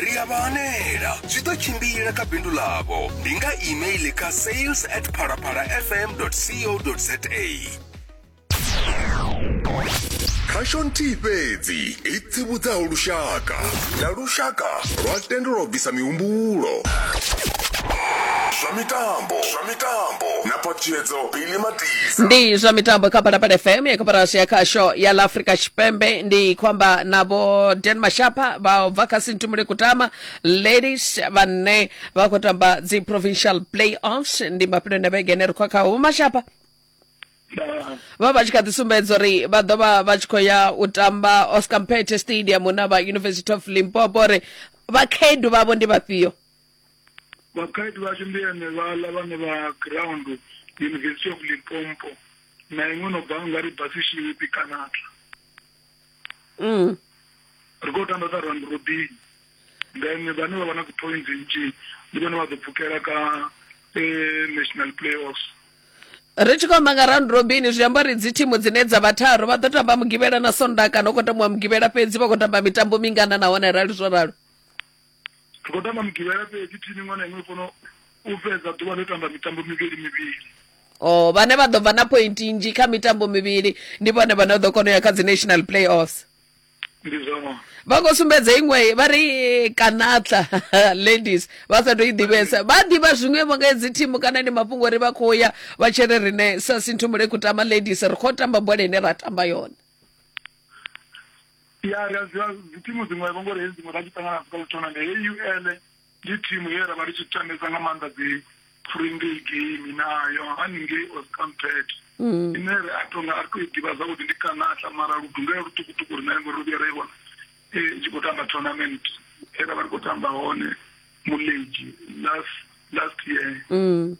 Ri a vha hanela, zwi ḓo tshimbila kha bindu ḽavho. Ndi nga email kha sales at phalaphalafm.co.za. khasho nthihi fhedzi i tsivhudzaho lushaka na lushaka lwa tendelwa u bvisa mihumbulo zwa mitambo zwa mitambo na phaṱhutshedzo ni matisa ndi zwa mitambo kha phalaphala fm ya koporasi ya khasho ya la africa tshipembe ndi khou amba na vho dan mashapa vha bva kha sintumule kutama ladies vhane vha khou tamba dzi provincial playoffs ndi mafhelo na vhege ene ri khou khaho vho mashapa vha vha tshi kha ḓi sumbedza uri vha ḓo vha vha tshi khou ya u tamba oscar mpete stadium na vha university of limpopo uri vhakhaedu vhavho ndi vhafhio vhakhaedu vhashu ndi henevhaḽa vhane vha ground university of limpopo na iṅwe no bva nga ri basishipi kanata mm. ri khou tamba sa round robin then vhane vha vha na dzi-points nnzhi ndi vhone vha ḓo pfukela ka eh, national playoffs ri tshi khou amba nga round robin zwi amba uri dzi thimu dzine dza vha tharu vha ḓo tamba mugivhela na sonda kana u khou tambiwa mugivhela fhedzi vha khou tamba mitambo mingana nahone rali zwo ralo ri khou tamba mugivhela fhedzi thimu iṅwe na iṅwe i fanela u fhedza ḓuvha ḽo tamba mitambo mivhili mivhili o oh, vhane vha ḓo bva na point nzhi kha mitambo mivhili ndi vhone vhane ḓo kona u ya kha dzi national playoffs ndi zwona vha khou sumbedza iṅwe vha ri kanatla ladies vha sa tou i ḓivhesa vha ḓivha zwiṅwevho nga hedzi thimu kana ndi mafhungo uri vha khou ya vha tshi ri rine sa sinthumule kutama ladies ri khou tamba bola ine ra tamba yone ya ri a zwi dzi thimu dziṅwe vho ngori hedzi dziṅwe ra tshi ṱangana na dzi tournament heyi UL ndi thimu ye ra vha ri tshi tambesa nga maanḓa dzi fringay game nayo haningei oscampet mm. ine ri a tonga a ri to i ḓivha zwavhuḓi ndi kanatla mara ludungela luṱukuṱuku ri nayo ngori ro vhuya ra i vhona i e, tshi khou tamba tournament e ra vha ri khou tamba hone mulegi last last year mm.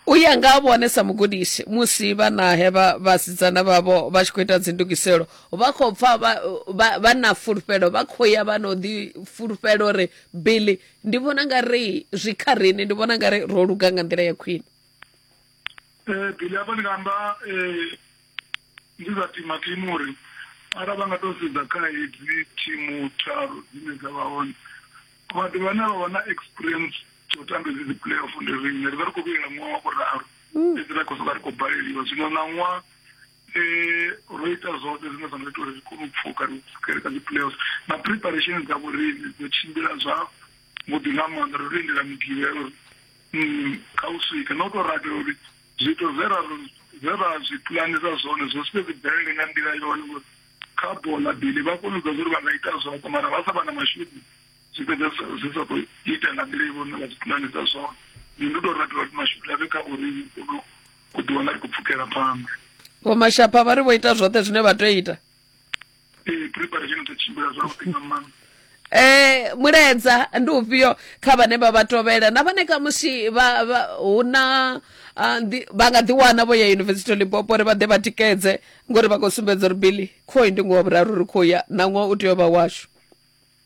u ya nga ha vhone sa mugudisi musi vhanahe vha vhasidzana vhavho vha tshi khou ita dzindugiselo vha khou pfa vha- vha vha na fulufhelo vha khou ya vha no ḓi fulufhela uri billy ndi vhona nga ri zwi kha riṋe ndi vhona nga ri ro luga nga nḓila ya khwine Eh, Billy hapa ndi nga amba eh, Ndi zwa tima tima uri ara vha nga tou sedza kha hedzi thimu tharu dzine dza vha hone vhathu vhane vha vha na experience tsho tamba hedzi dzi playoff ndi riṋe ri vha ri khou vhuyela ṅwaha wa vhuraru mm. fhedzi ra khou soka ri khou baleliwa zwino na ṅwaha eh ro ita zwoṱhe zwine zwa nga ita uri ri kone u pfuka ri pfukele kha dzi-playoffs na preparation dza vhoriṋe dzo tshimbila zwa vhuḓi nga maanḓa ro lindela migivhelo uri mm, kha u swika na u tou rabela uri Zwithu zwe ra zwe ra zwi pulanisa zwone zwo sike zwi bvelele nga nḓila yone ngori kha bo ḽa bili vha kone u ḓa uri vha nga ita zwoṱhe mara vha sa vha na mashudu zwi fhedza zwi sa khou ita nga nḓila i vhone vha zwi pulanisa zwone ndi ndi tou rabela uri mashudu a vhe kha uri kono u ḓiwana ri khou pfukela phanḓa vho mashapha vha ri vho ita zwoṱhe zwine vha tea u ita ee preparation ḓo tshimbila zwavhuḓi nga maanḓa eh muledza ndi ufhio kha vhane vha vha tovhela na vhane khamusi vha vha- hu na ah, ndi- vha nga ḓiwana vho ya yunivesithi limpopo uri vha ḓe vha tikedze ngori vha khou sumbedza uri bili khoi ndi ngoho vhuraru ri khou ya na ṅwaha u tea u vha washu